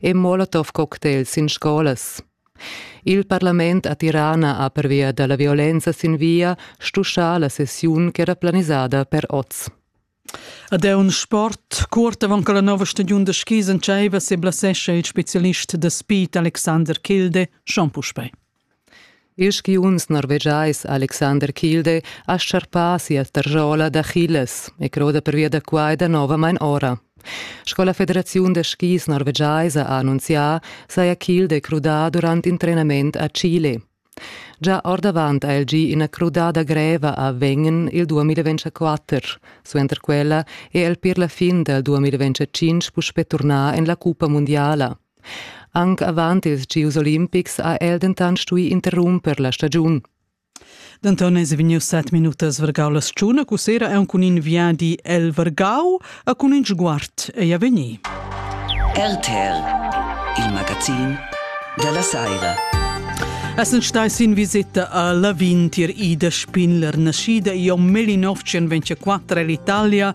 e Molotov-cocktails in scolas. Il parlament a Tirana ha pervia da la violenza sin via stuschà la sessiun ch'era planisada per oz. Ad è un sport curt avant che la nova stagiun da skis entscheiva se blasescha il specialist da spit Alexander Kilde schon puspei. Il skiunz norvegiais Alexander Kilde ha charpà sia tarzola d'Achilles e croda pervia da quai danovamain ora. Sco la federaziun da skis norvegiaisa ha annunzià, saja Kilde crudà durant in trenament a Chile. Già ordavant ha el gì ina crudada greva a Wengen il 2024. Suenter quella è el per la fin dal 2025 puspè turnà en la cuppa mundiala. Anc avant ils gieus olimpics ha el dentant stuì interrumper la stagiun. Denton eis vegnius set minutas vargau la stagiun, cus era aunc cun in viadi el vargau e cun in sguard ei a vegnir. RTL, il magazin della Saira. Essen stai sin visita a Lavin tier Ida Spindler, nascida Io 1924 all'Italia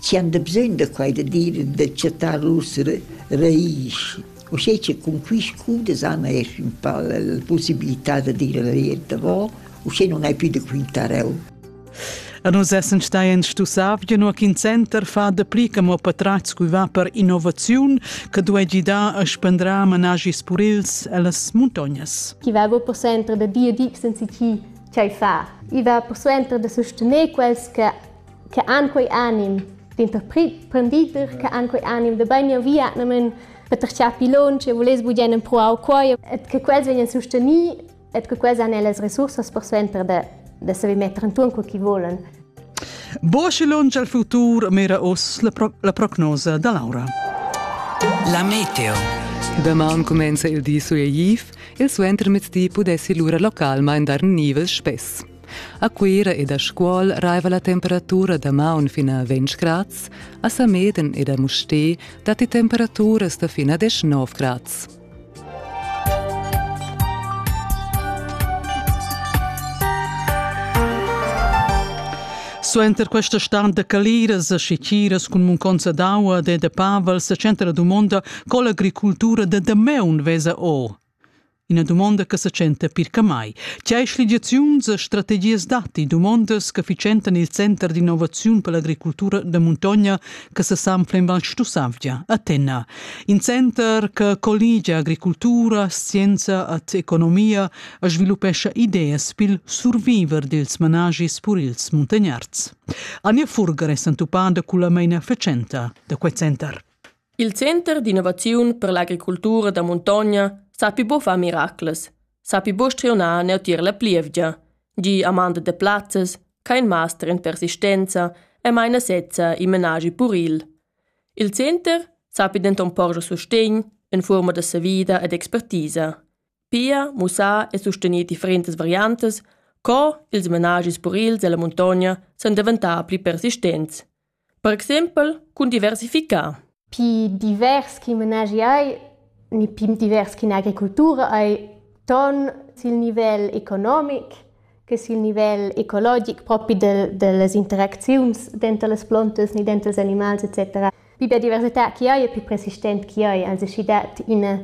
chi han da bsögn da quai da dir e da chattar uossa raisch. Uschè che cun quist cours da sana esch ün pa la la pussibilità da dir la via davò, uschè non hai più da quintar eu. A nus essan stai en stussavgia nua ch'in center fa dapli che mo patratgs cui va per innovaziun che duegi dar a spendrar managis purils ellas muntognas. Chi va per suenter da dir dig senza chi, tgei far. I va per suenter da sustener quels che che han quei anim d'interprendider, che han quei anim da bein via namen per terciar pilon, che voless bugen empruar quei et che quels vegnan susteni et che quels han ellas resursas per suenter da da saver metter intuorn co chi volan. Boschelon al futur mira oss la, pro la prognosa da Laura. La meteo. Damaun comenza il di sueiv, il suentermiezdi pudessi lura localmain dar nivels spess. A Cuira ed a Scuol raiva la temperatura da maun fin a 20 grads, a Sameden ed a Mustér datti temperaturas da fin a 19 grads. Suenter questa stand da caliras e schitiras cun munconza d'aua e de Pavel sa centra dumonda co l'agricultura da damaun vesa o. Ina dumonda che sa tschenta pir che mai. Tgei schligiaziuns e strategias datti dumondas che fitschentan il center d'innovaziun per l'agricultura da muntogna che sa sanfla in Val Stussavgia, a Tenna. In center che colligia agricultura, scienza ed economia e sviluppescha ideas pil surviver dils managis pur ils muntagnards. Ania Furger è s'entuppada con la meina fetschenta da quel center. Il center d'innovaziun per l'agricultura da muntogna sapi buca far miracles, sapi buca strionar neutier la plievgia, gie amanda da plazzas, ch'ha in master en persistenza e meina sezza in menaschi puril. Il center sapi denton porscher sustegn en fuorma da savida ed expertisa. Pia mussar e sustener differentas variantas co ils menaschis purils dalla muntogna san daventar pli persistents. Per exempel cun diversificar. Pi divers ch'i manegi ei ni pi divers ch'in'agricultura ei ton sil nivel economic che sil nivel ecologic propi del, dellas interacziuns denter las plontas ni denter ils animals etc. Pi biodiversità ch'i ei e pi persistent ch'i ei, anzi sch'i dat ina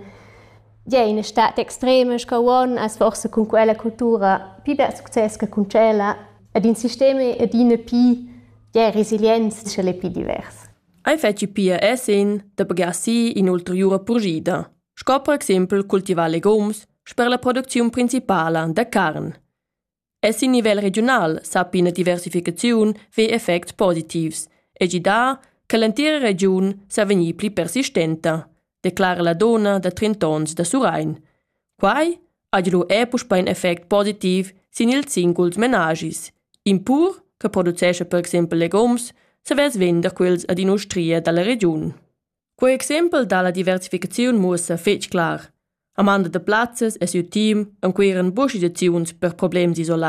ja, ina stad extrema sco uonn as forsa cun quella cultura pi bel success che cun tschella ed in sistem adina pi Tgei resilienza ch'el ei pli divers. Ei fetschi pia Esin da pagar si in'ulteriura purschida, sco per exempel cultivar legums sper la producziun principala da carn. E sin nivel regiunal sa ina diversificaziun ve effects positivs e gidà che l'entira regiun sa vegnir pli persistenta, declara la dona da trent'onns da Surrein, Quai ha giu er puspei in effect positiv sin ils singuls menagis. In pur che producescha per exempel legums savess vender quels ad in'ustria dalla regiun. Quei exempel dalla diversificaziun muossa fetg clar. Amanda de Plazzes e siu team encueran buca situaziuns per problems isolai